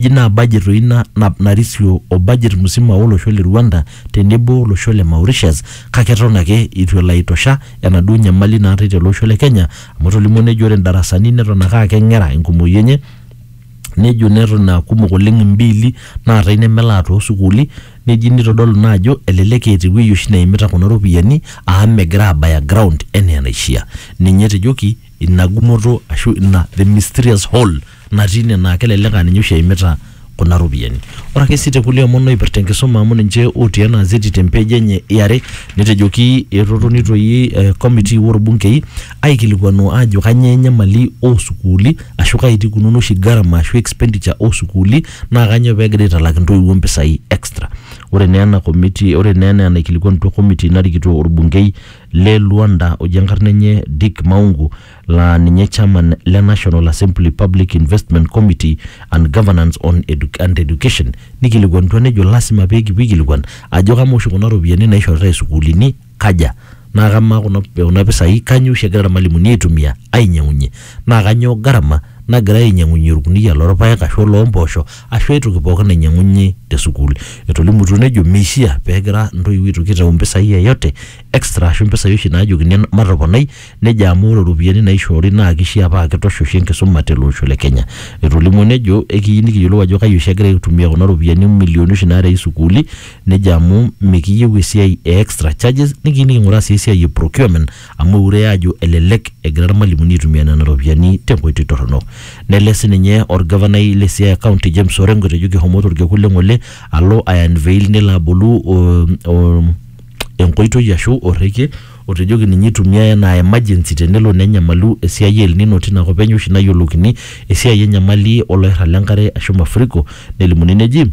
Eji naa budget doi ina nap narisio o budget musima o losho le Rwanda tenebo olosho le Mauritius kake eton ake eitu elo aitosha enaduo nyamali naatae tele osho le Kenya amu etolimuo nejo ore ndarasani neton ake aa keng'era enkumoi enye nejo neton aa kumok oleng imbiili naatae nemelaa too sukuuli neji nitodolu naa ajo elelek eeta ewuei oshi neimita kuna ropiyiani amu megira aabaya ground enaa enaishia. Ninye etejoki ina gumoto ashu ina the mysterious hole natii ine naa kelelek aa ninye oshi eimita kuna ropiyiani. Ore ake sii te kulie omon oipirta enkisuma amu ninche otii ena azeti te mpeej enye e are netejoki etotoni toi eh committee oo lbunkei aikilikuanu aajo kanyoo enyamali oo sukuuli ashu kaji etii ikununo oshi gharama ashu expenditure oo sukuuli naa kanyoo peegira aitalak intoiwuo impisai extra. Ore naa ena committee ore naa enaa enaikilikuanutua committee narikito olbunkei le Luanda oji enkarna enye Dick Maungu laa ninye Chairman le National Assembly Public Investment Committee and Governance on Edu and Education nikilikuanutua nejo lasima pee kipuo aikilikuan ajo kamaa oshi kuna ropiyiani naishoritae isukuulini kaja naa kamaa kuna kuna pisai kanyoo oshi egira irmalimuni aitumia ainyiang'unyie naa kanyoo gharama nagirae ainyiang'unyie orkuniyia lorpayek ashu oloompoosho ashu ae toki pookin nainyiang'uni te sukuul. Etolimutuo nejo meishia pegira intoiwuo aitoki aitau impisai yeyote extra ashu impisai oshi naajokini matoponai Nejo amu ore ropiyiani naishoori naa keishiaa paa kitosh oshi enkisuma tele osho le Kenya. Etolimuo nejo ekiyieu nikiyiolou ajo kai oshi egira aitumia kuna ropiyiani o milioni oshi naarei sukuuli. Nejo amu mikiyieu esiai e extra charges nikiyieu niking'uraa sii esiai e procurement amu eure aajo elelek egira ilmalimuni aitumia nena ropiyiani te nkoitoi torrono. Nelej sii ninye olgavanai le Siaya County James Orengo etejo kehomoito olkekun le ng'ole alo ai unveil nelo abolu enkoitoi ashu orrekie Otejoki ninye eitumia enaa emergency tenelo nenyamalu esiai e El Nino tina kop enye oshi nayioloukini esiai enyamali oloirrag le nkare aashu mafuriko nelimuni neji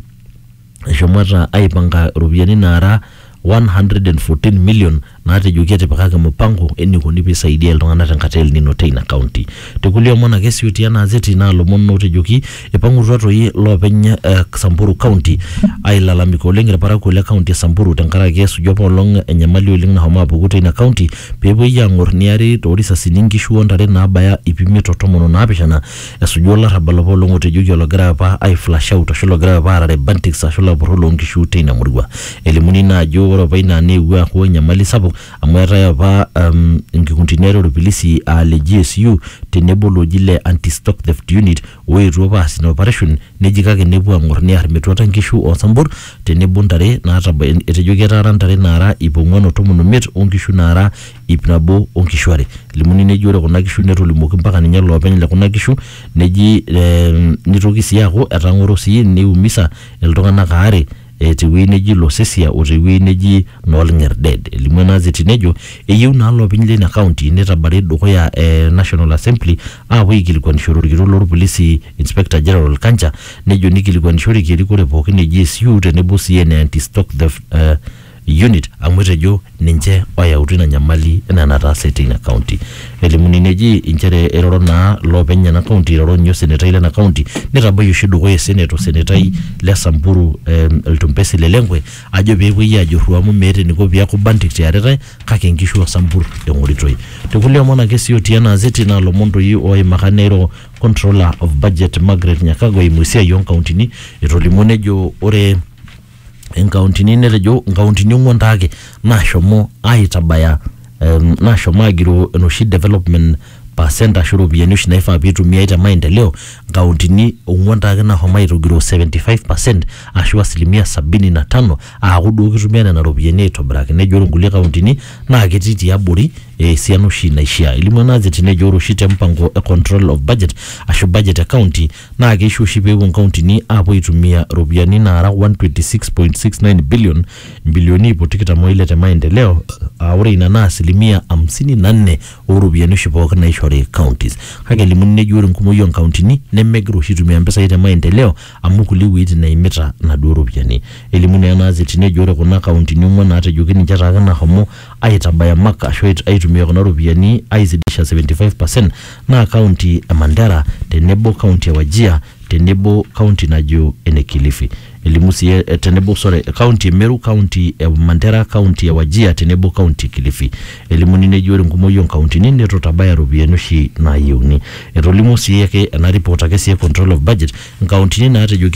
eshomoita aaipanka iropiyiani naara 114 million naatejoki etipikaki mupango eneikoni pee eisaidiai iltung'anak tenkata e El Nino teina kaunti. Te kulie omon ake siuti anaa azeti naa lomon ootejoki eipang'utua toi loopeny eh, Samburu County ailalamika oleng ilparakuo le county e Samburu tenkaraki esuju apa olong enyamali oleng nahomo apuku teina county pee epuoi aang'or neari too risasini nkishu o ntare naabaya iip imiet o tomon o naapishana esuju olarrabal apa olong otejoki ologira apa ai flash out ashu logira apa aarare bantiks ashu lapurrok loo nkishu teina murua. Elimuni naa ajo ore apa ina neewuo aaku enyamali sapuk amu eetae apa um, nkikundini are olpilisi aa le GSU tenebo looji le anti-stock theft unit oetuo apa aas ina operation neji kake nepuo ang'or near metuata nkishu osambur tenebo ntare naataba etejo ketaara ntare naara ip ong'uan o tomon omiet onkishu naara ip nabo onkishu are elimuni neji ore kuna kishu netolimuoki mpaka ninye loopeny le kuna kishu neji eh, nitoki sii aaku etang'oro sii niumisa iltung'anak aare e te wueji neji Losesia o te wueji neji Noolng'erded. Elimu ena azeti nejo eyieu naa loopeny leina kaunti neitabari dukuya e National Assembly aapuo aikilikuanishore olkitok loo lpolisi Inspector General Kanja nejo neikilikuanishoreki erikore pooki e GSU tenebo sii ene Anti-Stock Theft Unit amu etejo ninche oyautu ina nyamali enaa enataase teina kaunti. Elimuni neji inchere eiroro naa loopeny ena kaunti eiroro ninye osenetai lena kaunti neitabaiki oshi dukuya osenet osenetai le Samburu Ltumpesi Lelenkwe ajo pee epuoi aajurru amu meeta eniko pee eeku bandik te aretae kake inkishu oo Sambur eng'oritoi. Te kulie omon ake sii otii ena azeti naa ilomon doi ooimaka neiro Controller of Budget Margaret Nyakago eimu esiai oo nkauntini etolimuo nejo ore inkauntini netejo inkauntini ong'uan taake naashomo aitabaya em, naashomo agiroo enoshi development percent ashu iropiyiani oshi naifaa piitumiai te maendeleo inkauntini ong'uan taake nahomo aitogiroo 75 percent ashu asilimia sabini na tano aaku duo kitumia nena ropiyiani aitobiraki nejo ore inkulie kauntini naa ketii tiabori eh, esiana oshi naishia elimu ena azeti nejo ore oshi te mpango e control of budget ashu budget e county naa keisho oshi peepuo inkauntini aapuo aitumia iropiyiani naara 126.69 billion imbilioni iip o tikitam oile te maendeleo aa ore ina naa asilimia hamsini na nne ooropiyiani oshi pooki naishori counties kake elimuni neji ore enkumoi oonkauntini nemegira oshi aitumia impisai te maendeleo amu kulie wueitin eimita inaduo ropiyiani elimu naa ena azeti nejo ore kuna kauntini ong'uan naatejoki ninche taake nahomo aitabaya mak ashu aitumia kuna ropiyiani aizidisha 75 percent naa kaunti e Mandera tenebo kaunti e Wajia tenebo kaunti najo ene Kilifi. Elimu sii eh, tenebo sorry, kaunti e Meru, kaunti e Mandera, kaunti e Wajia tenebo kaunti e Kilifi. Elimuni neji ore enkumoi oo nkauntini neitu itabaya iropiyiani oshi naayieuni. Etolimuo sii ake ena report ake sii e control of budget inkauntini naatejoki